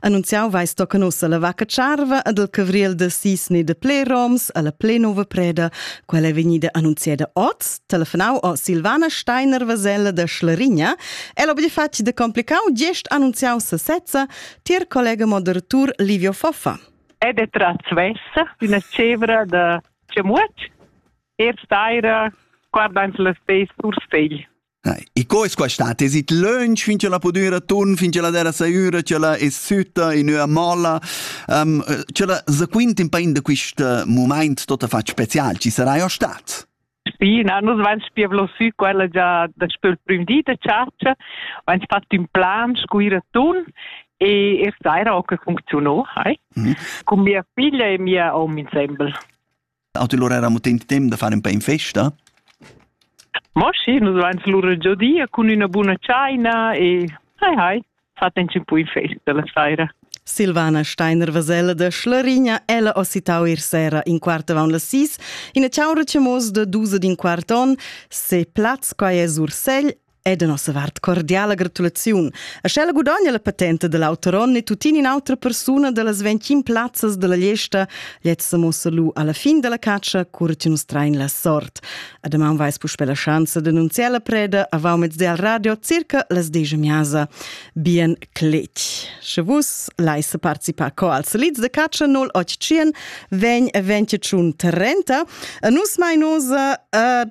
Annunziau vai sto che nossa la vacca charva ad il cavriel de sis ne de pleroms alla plenova preda, quella è vegnida annunziada oz, telefonau o Silvana Steiner Vasella de Schlarigna, el ob fatg de complicau gest annunziau sesezza tier collega moderatur Livio Foffa. È de tracvessa d'una cevra de Cemuac, er staira guardando la stessa sur segl. E co es quastà? Te sit lönch fin cha la pudüra turn, fin cha la terra saiura, cha la es sütta in üa molla. Um, cha la sequint in pain da quist mumaint tot affat special, chi sarai o stat? Spi, na, nus vain spia vlosü quella già daspö il prüm di da chatscha, vain fat ün plan scuira tun e e saira ho que funcziuno, hai? Mm -hmm. Con mia figlia e mia hom insembel. Auto lura era mutent temp da far un pè in festa. Mo sì, nus vain lura giodia cun üna buna tschaina e hai hai, fatten un po in festa la saira. Silvana Steiner-Vesella da Schlarigna ella ho citau ir sera in quart avant las sis, ina ciaura chemos da dus din quart on, se plaz quai es Ursel e da nossa vart cordiala gratulaziun. A sch'ella gudogna la patenta da l'auter onn e tuttina in'autra persuna da las 21 plazzas da la Liesta, lezza sa mossa lu alla fin della caccia, cura ti nus train la sort. A damaun vais puspe la schanza d'annunziar la preda avant mezz del radio circa las 10 miasa. Bien clet. Sche vus leis participar co als lids de caccia 0800 ven 28 30, a nus mai nosa a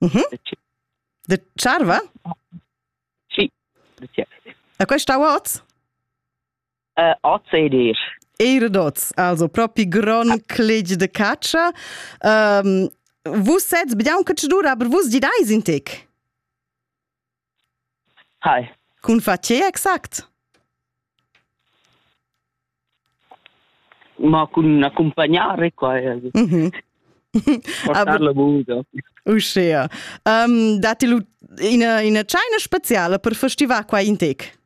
Mhm. De tscharva? Sì. E quest'aua oz? Uh, oz ed eir. Eir d'oz, also propi gron cleg de catscha. Um, vus sets biaun che dura, aber vus gidais in tec? Hi. Cun fa tge exact? Ma cun accumpagnare qua. Mm -hmm. Portar la buda. Uschea. Um, datti lu ina, ina tscheina speciala per festivar qua in tec?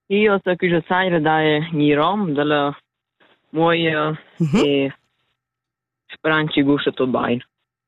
Io so che je saira da Mirom, dalla Moia mm -hmm. e speranci guscia tot bain.